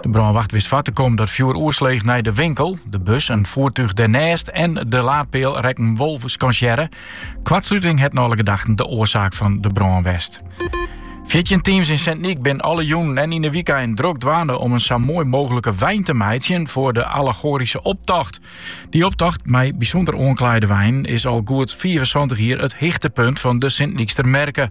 De brânwacht wist foar te kommen dat fjoer oersloech nei de winkel, de bus, in foertúch dêrnêst en de laadpeal rekken wol skansearre. Koartsluting het nei alle gedachten de oarsaak fan de brân west. Fjirtjin teams yn Sint Nyk binne alle jûnen en yn de wykeinen drok dwaande om in sa moai mooglike wein te meitsjen foar de allegoaryske optocht. Dy optocht, mei bysûnder oanklaaide weinen, is al goed 75 jier it hichtepunt fan de Sint Nykster merke.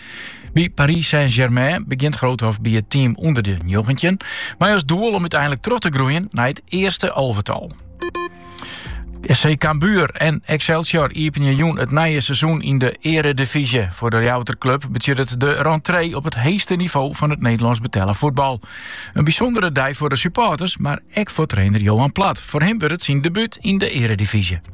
By Paris Saint-Germain begjint Groothof by it team ûnder de njoggentjin, mei as doel om úteinlik troch te groeien nei it earste alvetal. SC Cambuur en Excelsior iepenje jûn it nije seizoen yn de earedivyzje. Foar de Ljouwerter klup betsjut it de rentree op it heechste nivo fan it Nederlânsk betelle fuotbal. In bysûndere dei foar de supporters, mar ek foar trainer Johan Plat. Foar him wurdt it syn debút yn de earedivyzje.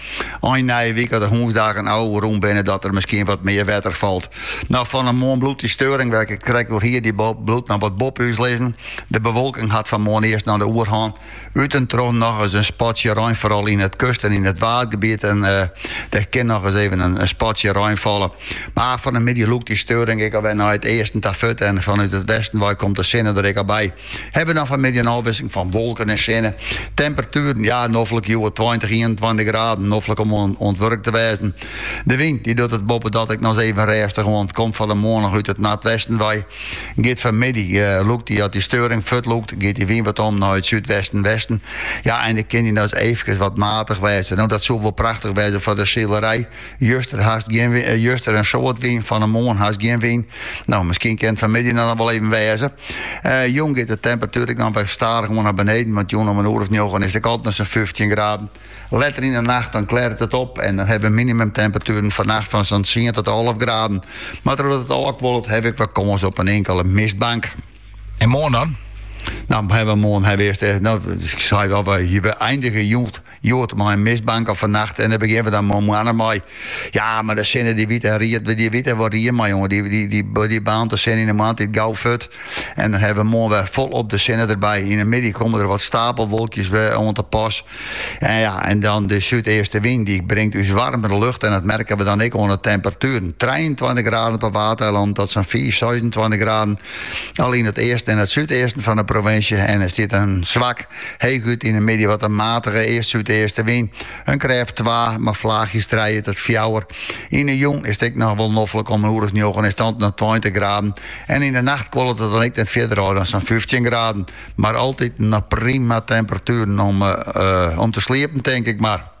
Ein nije wike as de hûnsdagen ôfrûn binne dat der miskien wat mear wetter falt. Noch fan 'e moarn bliuwt dy steuring wêr't ik krekt oer hie, dy bliuwt noch wat boppe ús lizzen. De bewolking hat fan moarn earst noch de oerhân. Ut en troch nochris in spatsje rein, foaral yn it kust en yn it waadgebiet. Dêr kin nochris even in spatsje rein falle. Mar fan 'e middei lûkt dy steuring ek al wer nei it easten ta fuort en fanút it westen wei komt de sinne der ek al by. Hawwe we dan fanmiddei in ôfwisseling fan wolken en sinne. Temperatueren, ja, noflik hjoed tweintich, ienentweintich graden, noflik om oan it wurk te wêzen. De wyn dy docht it boppedat ek noch even rêstich oan. Komt fan 'e moarn noch út it noardwesten wei. Giet fanmiddei, lûkt dy as dy steuring fuortlûkt, giet dy wyn wat om nei it súdwesten, westen. Ja, en dan kin dy noch efkes wat matich wêze. No, dat soe wol prachtich wêze foar de silerij. Juster, hast gjin, eh, juster in soad wyn, fan 'e moarn hast gjin wyn. No, miskien kin it fanmiddei dan noch wol even wêze. Eh, jûn giet de temperatuer ek dan wer stadichoan nei beneden, want jûn om in oer of njoggen is it ek al noch sa'n fyftjin graden. Letter yn 'e nacht dan klêret it op en dan hawwe we minimumtemperatueren fannacht fan sa'n tsien tot alf graden. Mar trochdat it ôfkuollet hawwe we ek wat kâns op in inkele mistbank. En moarn dan? No, hawwe we moarn hawwe we earst, eh, no, ik sei wol, we eindigje jûn Hjoed mei in mistbank of fannacht en dêr begjinne we dan mei moarn mei. Ja, mar de sinne dy wit der ried, dy wit der wol ried mei jonge, dy, dy, dy, dy baarnt de sinne yn de moarntiid gau fuort en dan hawwe we moarn wer folop de sinne derby. Yn de middei komme der wat stapelwolkjes wer oan te pas en ja, en dan de súdeastewyn dy bringt ús waarmere lucht en dat merke we dan ek oan de temperatueren. Trijeentweintich graden op 'e Waadeilannen tot sa'n fiif, seisentweintich graden al yn it easten en it súdeasten fan de provinsje en der stiet in swak Heechút yn 'e middei wat in matige east-súdeaste wyn, in krêft twa, mei flaachjes trije tot fjouwer. Yn 'e jûn is it ek noch wol noflik om in oer as njoggen is it dan noch tweintich graden en yn 'e nacht kuollet it dan ek net fierder ôf dan sa'n fyftjin graden. Mar altiten noch prima temperatueren om te sliepen, tink ik mar.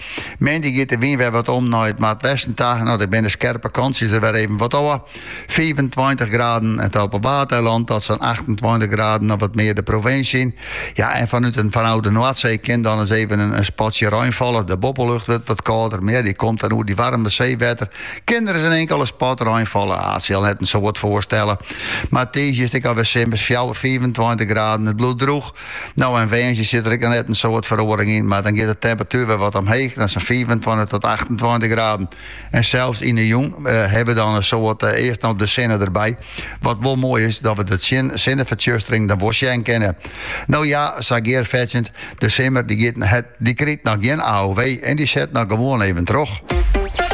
Moandei giet de wyn wer wat om nei it noardwesten ta. No, dan binne de skerpe kantsjes der wer even wat ôf. Fiifentweintich graden op 'e Waadeilannen tot sa'n achtentweintich graden of wat mear de provinsje yn. Ja, en fanút en fanôf de Noardsee kin dan ris even in spatsje rein falle. De boppelucht wurdt wat kâlder, mar ja, dy komt dan oer dat waarme seewetter. Kin der ris in inkel spatsje rein falle. It sil net in soad foarstelle, mar tiisdei is it ek alwer simmers, fjouwer, fiifentweintich graden. It bliuwt droech. No en woansdei sit der ek net in soad feroaring yn, mar dan giet de temperatuer wer wat omheech nei sa'n fiifentweintich tot achtentweintich graden. En sels yn 'e jûn hawwe we dan in soad, earst noch de sinne derby. Wat wol moai is, dat we de sinnefertsjustering dan wol sjen kinne. No ja, sa geandefuort sjoen, de simmer dy krijt noch gjin AOW en dy set noch gewoan even troch.